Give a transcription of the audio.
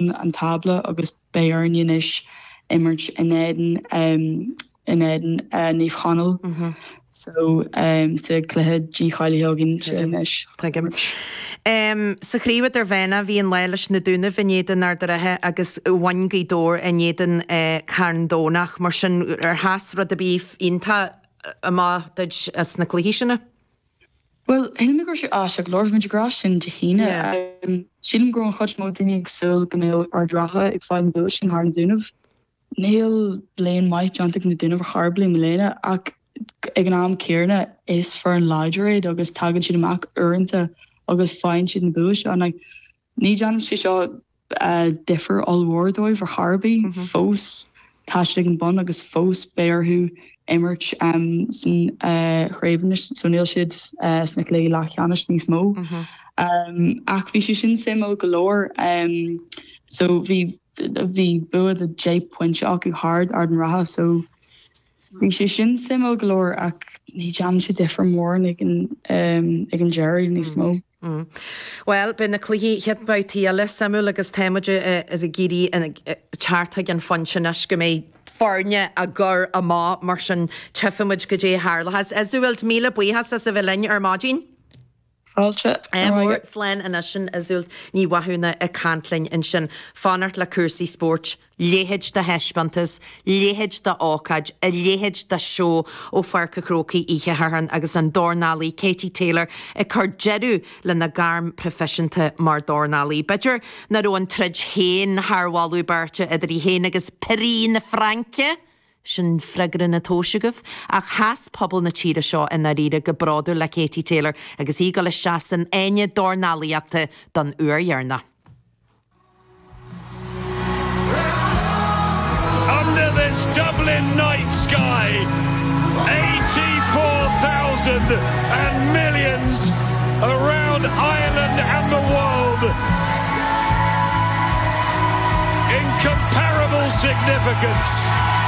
chun an tábla agus beidh orainn anois imirt in éadan in éadan Naomh Conaill so sa gcluiche dícháilithe againn sé anois. Tuigim. Sa chraobh idirmheánach bhí an lá leis na Dúnaibh in éadan Ard an Rátha agus bhain Gaoth Dobhair in éadan Carn Domhnaigh mar sin ar sheas rud ar bith iontach amach duit as na cluichí sin? Bhuel, shíl mé go raibh sé ait ag labhairt muid ag rá sin Dé hAoine. Sílim go raibh an chuid is mó daoine ag súil go mbeadh Ard Ratha ag fáil an bua sin thar na Dúnaibh. Níl bliain maith déanta ag na Dúnaibh ar chor ar bith i mbliana ach ag an am céanna is foireann láidir iad agus tagann siad amach uaireanta agus faigheann siad an bua seo. Ní dhéanann sé seo difear ollmhór dóibh ar chor ar bith. Fós tá siad ag an bun agus fós beidh orthu imirt sna craobhanna so níl siad sna cluichí leathcheannais níos mó. Ach bhí sé sin suimiúil go leor. So bhí bua de phointe acu thar Ard an Rátha so. Bhí sé sin suimiúil go leor ach ní dhéanann sé difear mór ag an deireadh níos mó. Bhuel, beidh na cluichí chéad bhabhta eile suimiúil agus tá muid ag éirí thart ag an phointe anois go mbeidh foirne á gcur amach mar sin tífidh muid caidé a tharlóchas. Iseult, míle buíochas as a bheith linn ar maidin. Fáilte mhór slán anois sin Iseult Ní Mhathúna ag caint linn ansin. Fanacht le cúrsaí spóirt. A leithéid de thaispeántas, a leithéid d'ócáid, a leithéid de sheó ó Pháirc a' Chrócaigh oíche Shathairn agus an dornálaí Katie Taylor ag cur deireadh lena gairm proifisiúnta mar dhornálaí. B'fhéidir ná raibh an troid féin thar mholadh beirte idir í féin agus Pirín na Fraince! Sin freagra an tomhais agaibh. Ach sheas pobal na tíre seo i ndáiríre go bródúil le Katie Taylor agus í ag dul isteach san fháinne dornálaíochta don uair dheireanach. Under this Dublin night sky, eighty four thousand and millions around Ireland and the world, incomparable significance.